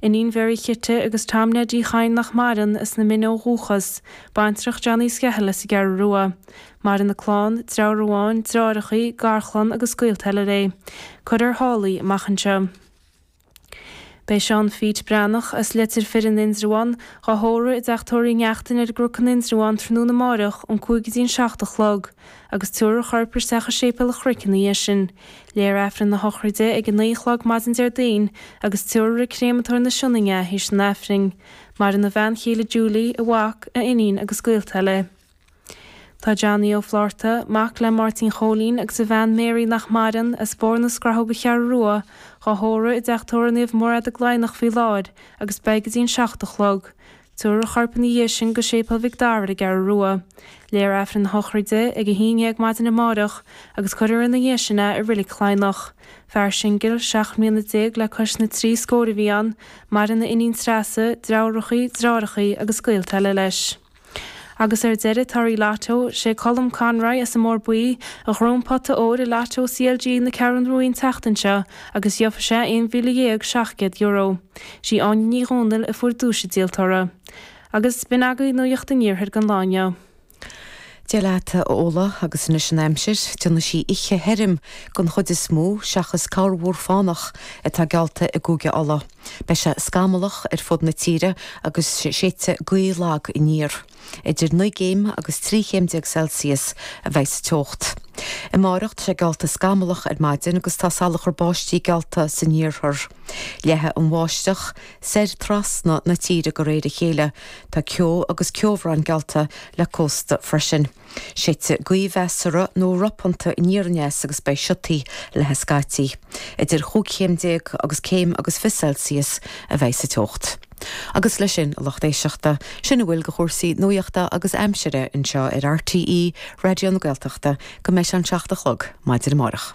Iníon Mhary Chite agus Tom Ned Uí Chadhain nach maireann, as na Mine ó dhúchas, baintreach Johnny Skehill as an gCeathrú Rua. Maireann a clann, dreabhar amháin, dreáreachaí, garchlann agus gaolta eile léi. Cuirfear thall í amach anseo. Beidh Seán Pheaits Breathnach, as Leitir Fir in Indreabhán, dhá thórramh i dteach tórraimh Uí Neachtain ar an gCnoc in Indreabhán tráthnóna amárach ón cúig go dtí an seacht a chlog, agus tabharfar a chorp isteach i Séipéal an Chnoic ina dhiaidh sin. Léifear Aifreann a shochraide ag a naoi a chlog maidin Déardaoin agus tabharfar go créamatóir na Sionainne é th'éis an Aifrinn. Maireann a bhean chéile Julie, a mhac, a iníon agus gaolta eile. Tá Johnny Ó Flátharta, mac le Máirtín Chóilín agus a bhean Mary, nach maireann, as Bóthar na Scrathóg, An Cheathrú Rua dhá thórramh i dteach tórraimh Naomh Mairéad i gCladhnach faoi láthair agus beidh go dtí an seacht a chlog. Tabharfar a chorp ina dhiaidh sin go Séipéal Mhic Dara ar an gCeathrú Rua. Léifear Aifreann a shochraide ag a haon déag maidin amáireach agus cuirfear ina dhiaidh sin é i Reilig Chladhnach. Fear singil, seacht mbliana déag le cois na trí scóir a bhí ann, maireann a iníon Treasa, dreabharachaí, drárachaí agus gaolta eile leis. Agus ar deireadh torthaí Lató, sé Colm Conroy as an mBóthar Buí, a ghnóthaigh an pota óir i Lató CLG na Ceathrún Rua an tseachtain seo agus gheobhaidh sé €11,700. Sí Áine Ní Dhomhnaill a fuair duais an díoltóra. Agus b'in agaibh nuaíocht an iarthair don lá inniu. Dia leat, a Ola, agus anois an aimsir, déanfaidh sí oíche thirim den chuid is mó, seachas corrmhúr fánach atá geallta i gCúige Uladh. Beidh sé scamallach ar fud na tíre agus séidfidh gaoth lag aniar. Idir naoi gcéim agus trí chéim déag Celsius a bheidh sa teocht. Amárach tá sé geallta scamallach ar maidin agus tá salachar báistí geallta san iarthar. Leathfaidh an bháisteach soir trasna na tíre go réir a chéile. Tá ceo agus ceobhrán geallta le cósta freisin. Séidfidh gaoth mheasartha nó ropanta aniar aneas agus beidh siotaí léithi scaití. Idir chúig chéim déag agus céim agus fiche Celsius a bheidh sa teocht. Agus leis sin, a lucht éisteachta, sin a bhfuil de chúrsaí nuaíochta agus aimsire anseo ar RTÉ Raidió na Gaeltachta go mbeidh sé an seacht a chlog maidin amárach.